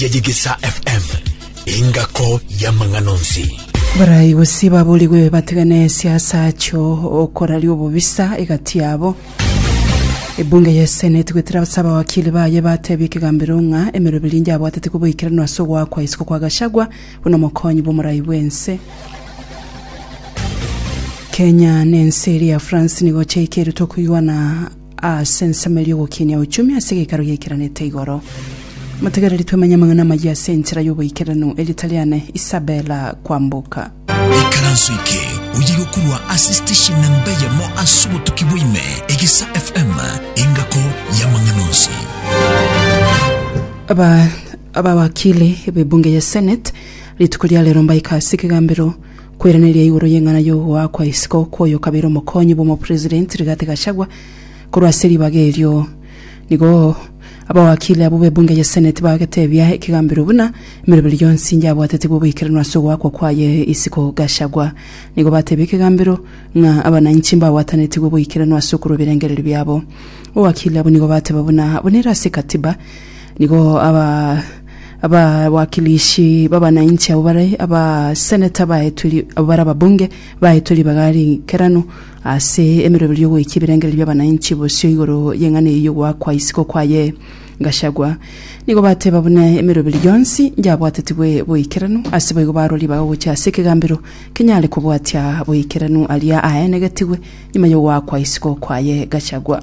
ya Yegesa FM, engako y'amang'ana onsi. Barai gose baborigwe bategane siasa achio okoraria obobisa egati yabo. Ebunge ya Senate gwetera ase abawakili baye batebia ekegambero ng'a emeroberi engiya abwatete koboikeranu ase ogoakwa isiko kwa Gachagua buna omokonyi bw'omorai bw'ense. Kenya na ense eria ya France nigo chiaikeretwe koigwana Ase ensemo eria ogokinia ochumi ase egeikaro giaikeranete igoro. Motegereri twemenye amang'ana amayia ase enchera y'oboikeranu erio Taliane Isabella kwamboka. Ikaranso eke oye gokurwa ase station namba eyemo ase obotuki bwa ime, Egesa FM, engako y'amang'ana onsi. Aba abawakili b'ebunge ya Senate rituko ria rero mbaika ase ekegambero Kweraneria igoro y'eng'ana y'ogoa kwa isiko kw'oyo okabeire omokonyi bw'omopresident Rigathi Gachagua korwa ase ribaga erio. Nigo abawakili abwo b'ebunge ya Senate bagetebia ekegambero buna emeroberi yonsi inye yabwatetigwe oboikeranu ase ogoakwa kwaye isiko Gachagua. Nigo batebia ekegambero ng'a abanainchi mbabwatanetigwe oboikeranu ase okorwa ebirengererio biabo. Abawakili abwo nigo bateba buna abwo nere ase ekatiba Nigo aba abawakilishi b'abanainchi abwo bare abaseneta baetwe ri- abwo bare ababunge, baetwe ribaga ri'enkerano ase emeroberio y'ogoika ebirengererio bi'abanainchi bosio igoro y'eng'ana eyio y'ogoakwa isiko kwaye Gachagua. Nigo bateba buna emeroberio yonsi yabwatetigwe boikeranu, ase boigo barwa ribaga gochia ase ekegambero kenyare kobwatia boikeranu aria aenegetigwe nyuma y'ogoakwa isiko kwaye Gachagua.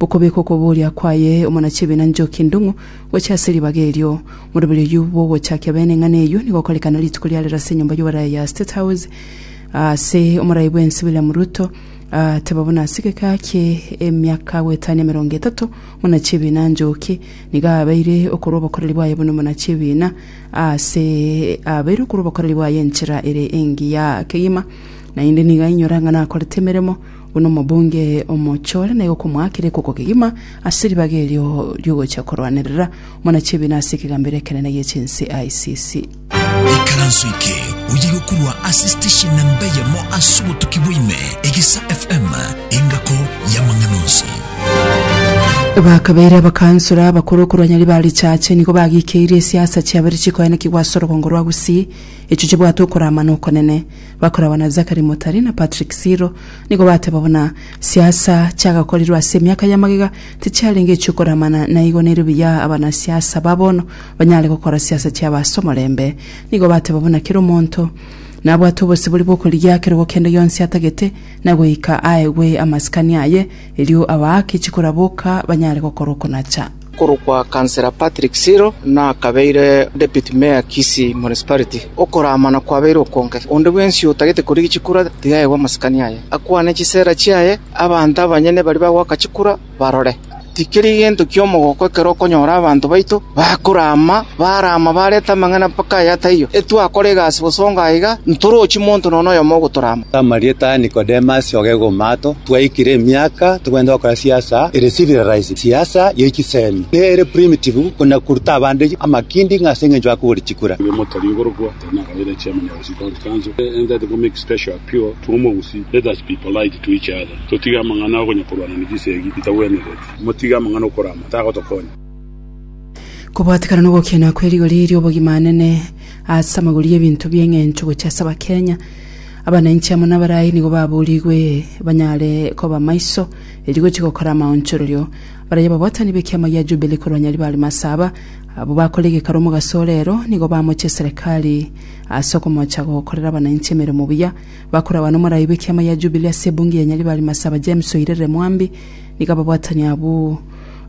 Gokobeka okoboria kwaye omonachibi na nchoki endong'u gochia ase ribaga erio. Moroberi oyio bw'ogochakia bene eng'ana eyio nigo okorekana rituko ria rero ase enyomba y'oboraia ya State House ase omorai bw'ense William Ruto ateba buna ase egeka kie emiaka goetania emerongo etato omonachibi na nchoki nigo aabeire okorwa obokoreri bwaye buna omonachibi na ase aabeire okorwa obokoreri bwaye enchera ere engiya kegima naende nigo ainyora ng'a nakorete emeremo Buna omobunge omochore na igokomoakera ekoko kegima ase ribaga erio riogocha korwanerera mwanachibi na ase ekegambero ekenene gie chinse ICC. Ikaranso eke oye igokorwa ase station namba eyemo ase obotuki bwaime, Egesa FM, engako y'amang'ana onsi. Bakabeire abakansora abakoro korwa nyari ba richache nigo bagikeire esiasa chiabere chikoenekigwa ase orogongo rwa Gusii, echo chibwate okoraama na okonene. Bakoragwa na Zachary Motari na Patrick Siro nigo bateba buna siasa chiagakorirwe ase emiaka ya magega tichiarenge echiokoramana na igo nerio buya abana siasa ba bono banyare gokora siasa chiabo ase omorembe. Nigo bateba buna kera omonto nabwate obosibori bw'okorigia kerogo kende gionsi atagete na goika aegwe amasikani aye erio abaake chikoraboka banyare gokora okonacha. Okorokwa Councillor Patrick Siro nakabeire Deputy Mayor Kisii Municipality. Okoraamana kwabeire okonge. Onde bwensi otagete korigia chikura tiga aegwe amasikani aye, akwane chisera chiaye, abanto abanyene baria bagoaka chikura barore. Tikeri gento ki'omogoko ekero okonyora abanto baito bakoraama, baraama bareta amang'ana mpaka aya taiyo. Etwakora egasi bosongo aiga, ntorochi monto nonya noyomo ogotoraama. Amarieta Nicodemus oge Gomato, twaikire emiaka togenda gokora siasa ere civilized. Siasa ye chisemi nere primitive konya koruta abande amakindi ng'a ase engencho akogora chikura. Kobwatekana na ogokiania kwe rigori ri'obogima anene ase amagori y'ebinto bi'engencho gochia ase Abakenya, abanainchi amo nabarai nigo baburigwe banyare koba maiso, erio gochia gokora amaonchorerio. Baraia babwatani b'ekiama gia Jubili korwa Nyaribari Masaba, abwo bakore egekaro omo Gasorero, nigo bamochie Serikali ase okomocha gokorera abananchi emeremo buya. Bakora abana omoraai bw'ekiama gia Jubili ase Ebunge ya Nyaribari Masaba James Oirerere Mwambi, nigo ababwatani abwo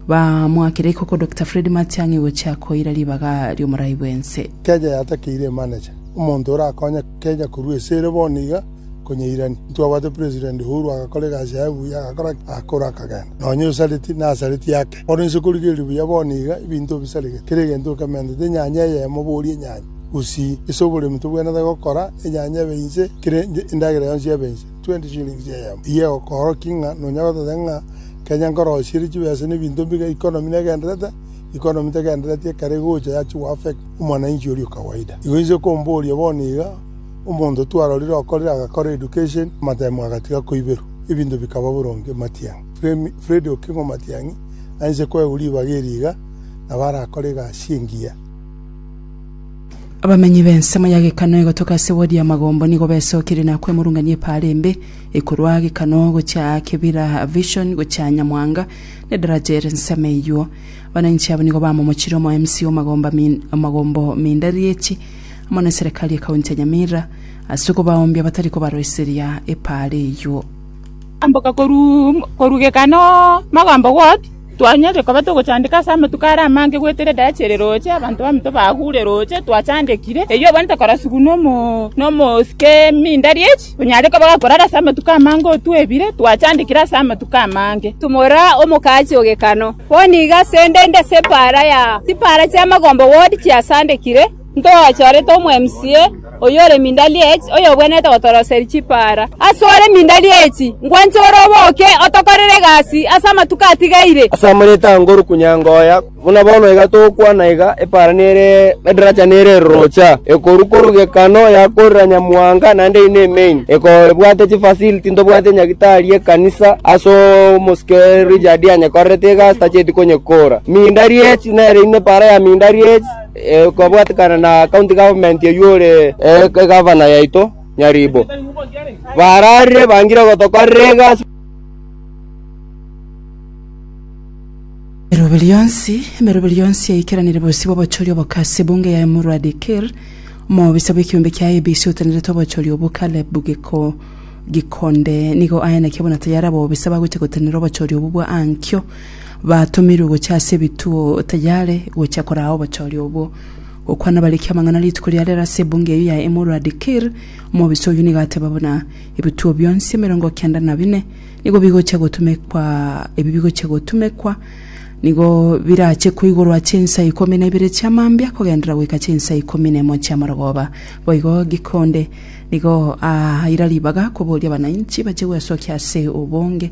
baamoakire ikoko Dokita Fred Matiang'i gochia koira ribaga ri'omoraai bw'ense. Keeja yatakeire emanecha. Omonto orakonye keeja korwa esere bono iga. Konya irani, intwabwate president ourwa agakora egasi yaye buya, agakora ki? Agakora akagenda. Nonya osareti, nasareti ake. Bono inse korigereria buya bono iga, ebinto bisaregete, kera egento okementete enyanya eyemo boria enyanya, gusii, ase oboremi tobwenerete gokora enyanya ebe inse, kera endagera yonsi ebe inse, 20 shillings eyemo. Eyio egokora ki ng'a nonya goteta ng'a kenya nkorosirie chibesa na ebinto mbiga, economy negenderete? Economy tegendereti ekero egocha yachia goaffect omwananchi oria o kawaida. Igo inse komboria bono iga. Omonto twarorire okorire agakora education, amatemo agatiga koiberwa, ebinto bikaba boronge. Matiang'i, Freddy Okingo Matiang'i, ainse koegwa ribaga eri iga, nabo arakore egasi engiya. Abamenyi b'ensemo ya Gekano egotoka ase wodi ya Magombo nigo besokirie na kwemurungania epaara embe ekorwa Gekano gochia Kibira Vision gochia Nyamwanga na edaraja ere ensemo eyuo. Abananchi abwo nigo bamomochire omo-MC o Magombo Minda Rieti, amo neserekari y'ekaunti ya Nyamira ase okobaoombia batari kobaroiseria epaara eyio. Amboka korugeka no Magambo Ward, twanyorire koba togochandeka ase amatuko are amange goetera edarachi ere roche, abanto baminto bagure roche, twachandekire. Eyio obonete korasugwa no mosike Mindariech, onyare koba gakorara ase amatuko amange otwebire, twachandekire ase amatuko amange. Tumora omokachi ogekano, bono iga asende inde ase epaara ya chipaara chia Magombo Ward chiasandekire. Ntoachorete omweMCA oyore Mindaliech, oyobwenerete gotoroseria chipaara. Asore Mindaliech, nkwanche ore oboke otokorere egasi ase amatuko atigaire. Ase amareeta a Nguru Kunyangoya, buna bono iga togokwana iga, epaara nere edaracha nere erorocha, ekorwa korwa Gekano yakorera Nyamuhanga naende eyi nemeini, ekobwate chifacility ntobwate Nyagitari y'ekanisa ase omosike Richard anyekorerete egasi tacheti konyekora. Mindaliech nere ime epaara ya Mindaliech. kobwatekana na county government oyio ore egavana yaito nyaribo, bararire bangire gotokorera egasi. Emeroberi yonsi emeroberi yonsi yaikeranire bosio bw'obochori obo Kasi Bunge yaye Murwadi Kir omobisa bw'ekiombe kia IEBC otenerete obochori obwo Caleb Giko Gikonde nigo aye naki abona tayari abobisa bagochia gotenera obochori obwo bwa ankio Batomirwe gochia ase ebituo tayare gochia koraa obochori obwo. Gokwana bariki amang'ana rituko ria rero ase ebunge eyio ya Emuru Adikir, omobisa oyio nigo ateba buna ebituo bionsi emerongo kenda na bine nigo bigochia gotumekwa ebi bigochia gotumekwa nigo birache koigorwa chinsa ikomi na ibere chia mambia kogenderera goika chinsa ikomi na emo chia marogoba. Boigo Gikonde nigo aira ribaga koboria abananchi bache gwesokia ase obonge.